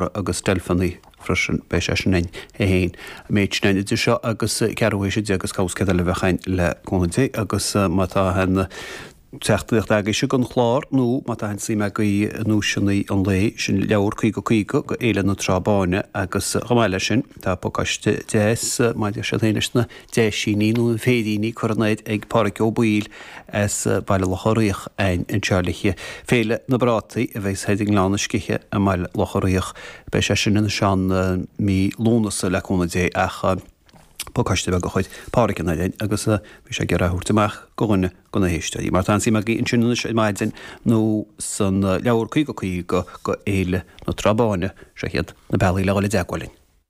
mhara agus deilfeanaí freisin. Beidh sé sin ann é féin, an méid sin ann idir seo agus ceathrú haoise déag agus cabhas céad eile a bheadh ann le cúnamh Dé agus má tá an teachtaireacht agaibhse don chlár nó má tá an suim agaibh i nduaiseanna an lae, sin leabhar 50 50 go Fhéile na Trá Báine agus chomh maith leis sin tá pacáiste deas, má deir siad féin, leis na. Deasa nó féiríní curtha in airde ag Pádhraic Ó Baoill as Baile Locha Riach a'ainn anseo le haghaidh. Féile na bPrátaí a bhéas ar siúl i nGleann na Sceiche i mBaile Locha Riach. Beidh sé sin ann san mí Lúnasa le cúnamh Dé ach pacáiste beag a chuir Pádhraic in airde agus bhí sé ag iarraidh a thabhairt amach go dhuine de na héisteoirí mar tá an CMG ansin anois ar maidin nó san leabhar Caoga Caoga go Fhéile na Trá Báine. Seo hiad na bealaí le dhul i dteagmháil linn.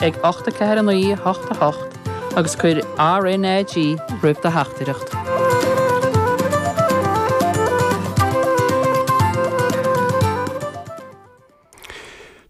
ag 8 4 9 8 8 agus cuir RNAG roimh do theachtaireacht.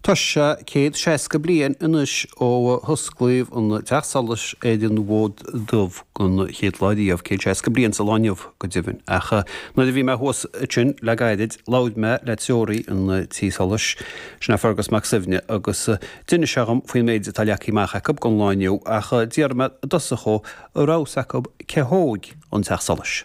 Tá sé céad seasca bliain anois ó osclaíodh an teach solais ar an bhFód Dubh den chéad lá riamh, céad seasca bliain sa lá inniu go deimhin. Ach nuair a bhí mé thuas ansin le gairid labhair mé le treoraí an tí solais, sin é Fergus Mac Suibhne, agus D'inis sé dhom faoin méid atá leagtha amach acu don lá inniu ach d'iarr mé i dtosach go raibh a fhios acu cé a thóg an teach solais.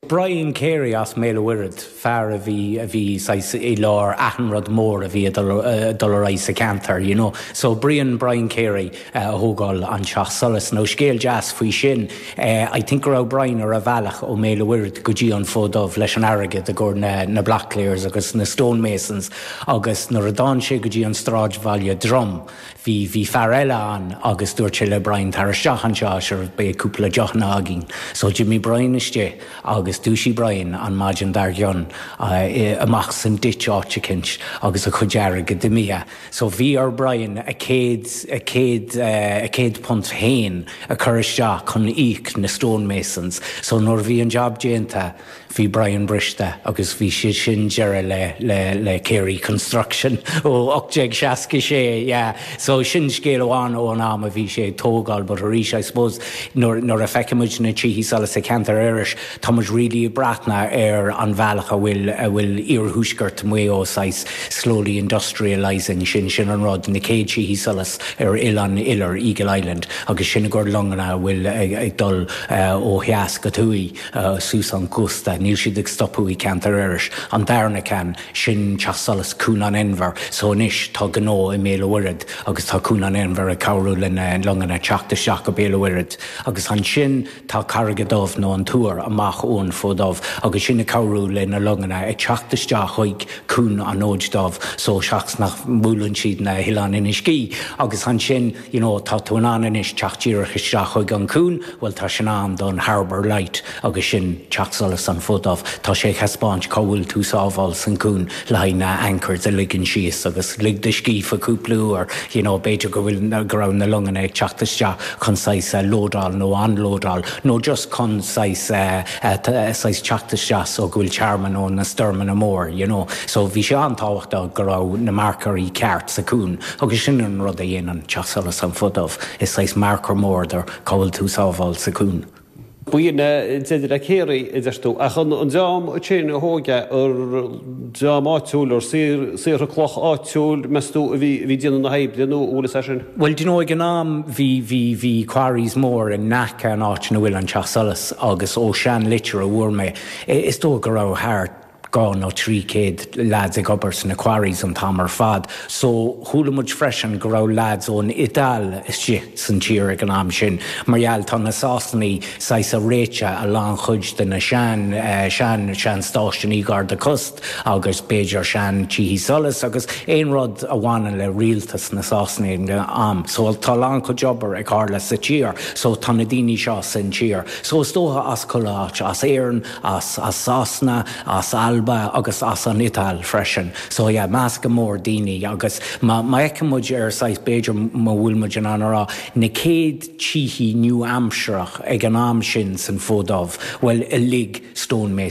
Brian Carey as mBéal a' Mhuirthead, fear a bhí, a bhí saghas i lár achan rud mór a bhí a' dul, a' dul ar aghaidh sa cheantar you know. So Brian, Brian Carey a thógáil an teach solais. Now scéal deas faoi sin, eh I think go raibh Brian ar a bhealach ó mBéal a' Mhuirthead go dtí an Fód Dubh leis an airgead i gcomhair na, na block layers agus na stonemasons, Agus nuair a d'fhan sé go dtí an stráidbhaile Drom, bhí, bhí fear eile ann agus dúirt sé le Brian tar isteach anseo sure beidh cúpla deochanna againn. So d'imigh Brian istigh agus dúisigh Brian an maidin dár gcionn amach san ditch áit eicint agus a chuid airgead imithe. So bhí ar Brian a céad, a céad, a chéad punt féin a cur isteach chun íoc na stonemasons. So nuair a bhí an job déanta, Bhí Brian briste agus bhí sin deireadh le, le, le Carey Construction ó 1866, yeah. So sin scéal amháin ón am a bhí sé ag tógáil but arís I suppose nuair, nuair a feicimid na Tithe Solais sa cheantar Iorrais tá muid really ag breathnú ar an bhealach a bhfuil, a bhfuil iarthuaisceart Mhaigh Eo saghas slowly industrialising, sin, sin an rud, na chéad Tithe Solais ar Oileán Iolair, Eagle Island agus sin i gcomhair longanna a bhfuil ag, ag dul ó theas go thuaidh. suas an cósta. Níl siad ag stopadh i ceantar Iorrais. An darna ceann, sin Teach Solais Cuan an Inbhir. So anois tá gnó i mBéal an Mhuirthead agus tá Cuan an Inbhir ag cabhrú le na longanna teacht isteach go Béal an Mhuirthead. Agus ansin tá Carraig a' Dubh nó an Tor amach ón Fód Dubh agus sin ag cabhrú le na longanna ag teacht isteach chuig Cuan an Fhóid Dubh so sa chaoi is nach mbuaileann siad na hOileáin Inis Gé. Agus ansin. you know tá tú in ann anois teacht díreach isteach chuig an cuan bhuel tá sin ann don harbour light agus sin teach solas an Fód Dubh tá sé ag thaispeáint cá bhfuil tú sábháil san cuan le haghaidh na anchors a ligean síos agus lig do scíth cúpla uair you know b'fhéidir go bhfuil go raibh na longanna ag teacht isteach chun saghas a lódáil nó unlódáil nó just chun saghas saghas teacht isteach so go bhfuil tearmann ó na stoirmeanna mór you know so bhí sé an-tábhachtach go raibh na marcairí ceart sa cuan Agus sin an rud a dhéanann Teach Solais an Fód Dubh, is saghas marcair mór do cá bhfuil tú sábháil sa cuan. Buíon de reacéirí, a deir tú, ach an dream céanna a thóg é, ar dream áitiúil, ar saortha cloch áitiúil, meas tú, a bhí ag déanamh na hoibre nó an bhfuil a fhios é sin? Bhuel, do you know, ag an am bhí, bhí, bhí quarries mór in aice an áit ina bhfuil an Teach Solais agus ó sean litir a bhfuair mé, is dóigh go raibh thart, dhá nó trí céad leaids ag obair sna quarries an t-am ar fad so chuala muid freisin go raibh leaids ón Iodáil istigh san tír ag an am sin mar gheall tá na Sasanaigh saghas a' réiteadh a lán chuid de na sean, sean, sean stáisiúin garda cósta agus b'fhéidir sean tithí solais agus aon rud a bhaineann le rialtas na Sasanaigh ag an am so tá a lán cuid obair ag tarlú sa tír so tá na daoine seo san tír so is dócha as chuile áit as Éirinn as Sasana, as Alba agus as an Iodáil freisin. So yeah, meascán mór daoine agus má fheiceann muid ar saghas, b'fhéidir má bhfuil muid in ann a rá, na céad tithí nua-aimsireach ag an am sin san Fód Dubh, bhuel uilig stone masons.